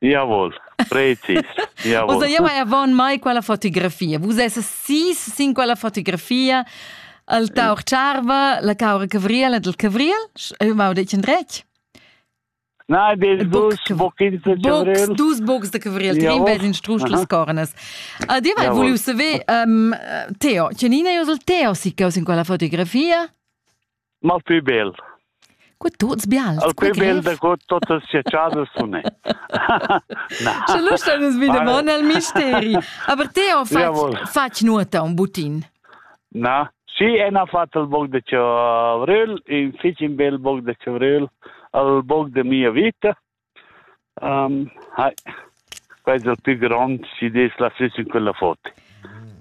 Diavol, precis. Diavol. Usa jema avon mai quella fotografia. Vus esses sis sin quella fotografia. El tauch tscharva, la caura cavriel et el cavriel, eu mau detg in dretg? Na, des dus boxs de cavriel. Dus box de cavriel, ti rinveis in strusch las cornas. A dir vai, voliu saver, um, Teo, tgenina eus el Teo si caus in quella fotografia? mal pü bel. Co tuts bials. Al pü bel da co totas sia casa sune. Na. Sche l'usta nus vide bon al misteri. Aber Theo fatg fatg nuota un butin. Na, si en ha fatto il bog de Chavrel, in fich in bel bog de Chavrel, al bog de mia vita. Hai, quei dil pli grond si dess la sit sin quella foto.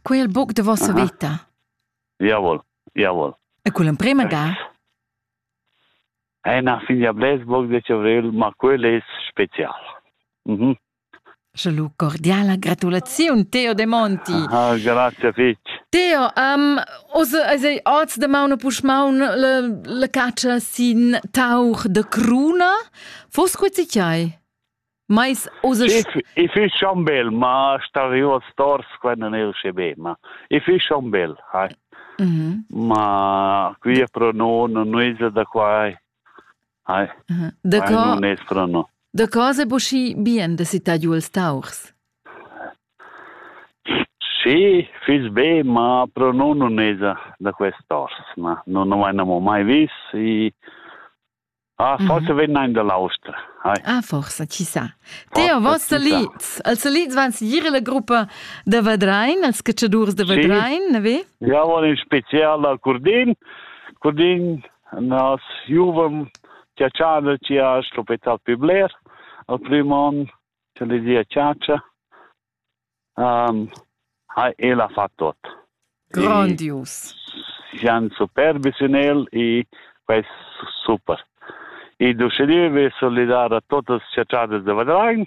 Quei il buc de vossa veta. Jawohl, jawohl. E quella emprema ga? È una figlia Blesburg de Cevriel, ma quella è special. Mhm. Sche lu cordiala gratulaziun Teo de Monti. Ah, grazie fetg. Teo, um, os eis ei oz de maun pusch maun le, le caccia sin tauch de cruna? Fos quezi chai? Mais os I fi schon bel, ma sta vi oz tors quando ne usce be, ma i fi schon bel, hai. Mm -hmm. Ma qui pro non, non da quai. Hi. Da co... Non es però no. Da cosa è buschi bien da citar giù els taurs? Sì, fiss be, ma però non non es da quest'ors, na. Non ho mai, mai vis e... Ah, forse vegna in dall'Austria. Hi. Ah, forse, chissà. Teo, vos salids. Els salids van seguir la gruppa da Vadrein, els cacciadurs de Vadrein, sì. ne ve? Ja, van in special a Curdin. Curdin Na, juvam chatschader chi ha l'ospital pü bler al prüm on, cha le dia chatscha. Um, ha, el ha fat tot. Grandius. Sian superbi sin el e quest super. E d'uschedì ve solidar a totas chatschadas de Vadrain.